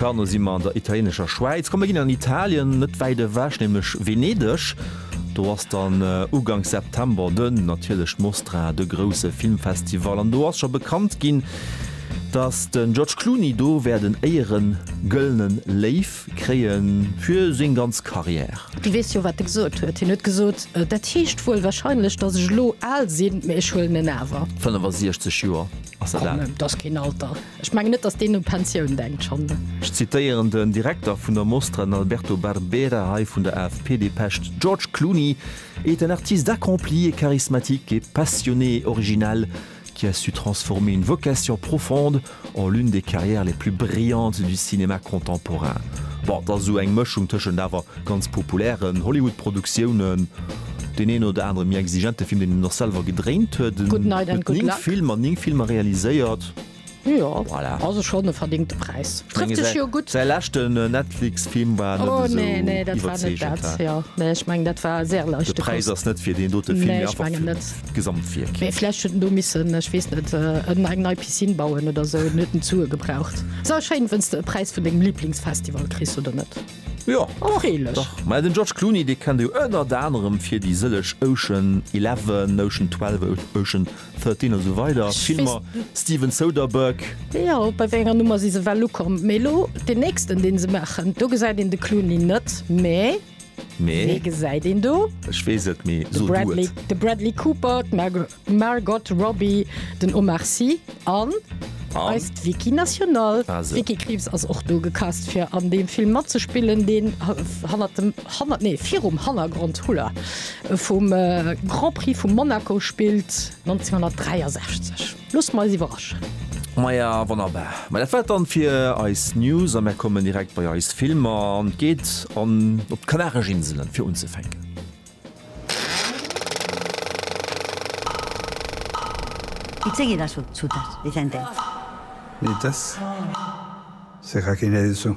Dann si mer an der italienescher Schwäiz. Komm, mir ginn an Italien, net wäit ewech, nämlech Venedeg. Do ass dann uganks September de natierlech d'Mostra, de grousse Filmfestival. An do ass scho bekannt ginn, datt den George Clooney do wäert en éieren Gëllenen Léiw kréien fir seng ganz Carrière. Dir weess jo, wat e gesot huet. Hien huet gesot, Dat heescht wuel wahrscheinlech, datt ech elo al sinn, mee ech huelen en awer. 65 Joer, ass dat al? Komm, dat ass keen Alter. Ech mengen net, datt deen u Pensioun denkt schonn. Ech zitéieren den Direkter vun der Mostra, den Alberto Barbera, hei vun der AFP-Depescht, George Clooney est un artiste accompli et charismatique et passionné et original qui a su transformer une vocation profonde en l'une des carrières les plus brillantes du cinéma contemporain. Bon, et ass esou eng Mëschung tëschent awer ganz populären Hollywood-Produktiounen, deen een oder anere méi exigente Film, deen en och selwer gedréint huet, en huet 9 Filmer, 9 Filmer realiséiert, Jo, voilà. Also schonn e verdingte Präis. Trëfft sech jo gutt. Säi leschte Netflix-Film war net esou iwwerzeegend. Oh nee, nee, dat war net dat. Jo, nee, ech mengen, dat war séier leicht. De Präis ass net fir deen dote Film, mee einfach fir d'Gesamtwierk. Mee vläicht huet en do missen, ech weess net, eng nei Piscine bauen oder esou, en huet en zu e gebraucht. Ass awer schéin, wenn's de e Präis vun dengem Liblingsfestival kriss, oder net? Jo, dach. Mä den George Clooney, dee kennt ee jo ënnert anerem fir déi sëllech Ocean Eleven, Ocean Twelve, Ocean. 13 a sou weider Filmer Steven Soderbergh. Jo bei wéi enger Nummer si se well ukomm? Mee elo deen nächsten deen se maachen, do gesäit een de Clooney net, mee Mee wee gesäit een do? ech weess et, mee De so du Bradley, et. de Bradley Cooper, d'Margo, d'Margot Robbie, den Omar Sy an An eist Vicky National. Also. D'Vicky Krieps ass och do gecast fir an deem Film matzespillen deen ha, hannert dem. Hanner, nee, virum Hannergrond, houla, vum Grand Prix vu Monaco spillt 1963. Loosst mer eis iwwerraschen. Maja, wonnerbar. Mä dat war et dann fir eis News a mär kommen direkt bei eis Filmer an et geet an op d'Kanaresch Inselen, fir unzefänken. Di zéng Eeder sou zu, dass déi säin Däitsch. Nee, dass se Raquinelle sou.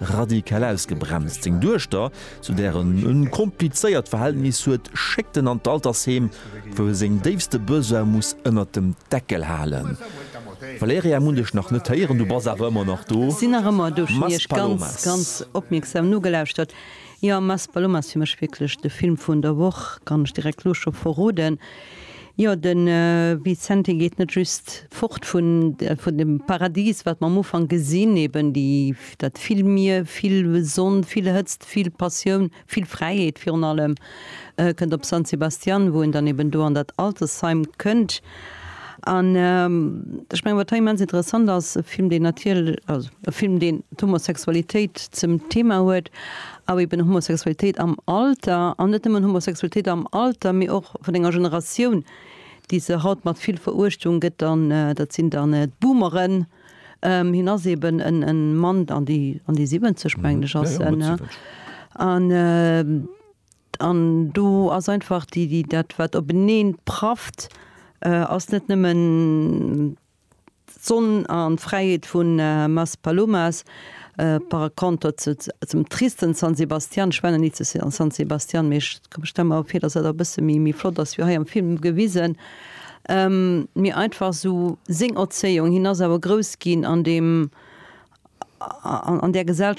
radikal ausgebremst. Seng Duechter, zu där en e komplizéiert Verhältnis huet, schéckt en an d'Altersheem, wou e seng déifste Besoine muss ënnert dem Deckel halen. Valeria, mun dech nach net héieren, du bass awer ëmmer nach do. Sinn nach ëmmer do, schon iech ganz, ganz opmierksam nogelauschtert. Jo, Mass Ballon ass fir mech wierklech de Film vun der Woch, kann ech direkt lo scho verroden. Jo, de Vicente geet net just fort vun vun dem Paradis, wat mer am Ufank gesinn, eben déi dat vill Mier, vill Sonn, vill Hëtzt, vill Passioun, vill Fräiheet virun allem, kënnt op San Sebastián, wou en dann eben do an dat Altersheim kënnt. An ech mengen, wat hei immens interessant ass, e Film, deen natierlech, also e Film, deen d'Homosexualitéit zum Thema huet, awer eben Homosexualitéit am Alter, an net nëmmen Homosexualitéit am Alter, mee och vun enger Generatioun, déi se haut mat vill Veruechtung gëtt, an dat sinn dann d'Boomeren. Hien ass eben e Mann an déi 70, mengen ech, ass en, an. An do ass einfach déi, dat wat openeen prafft, ass net nëmmen d'Sonn an d'Fräiheet vun Maspalomas, par contre zum tristen San Sebastian, ech war nach ni zu San Sebastian, mee ech stelle mer vir, dass dat e bësse méi flott ass wéi hei am Film gewisen, mee einfach esou seng Erzéiung, hien ass awer grouss ginn an deem, an där Gesellschaft,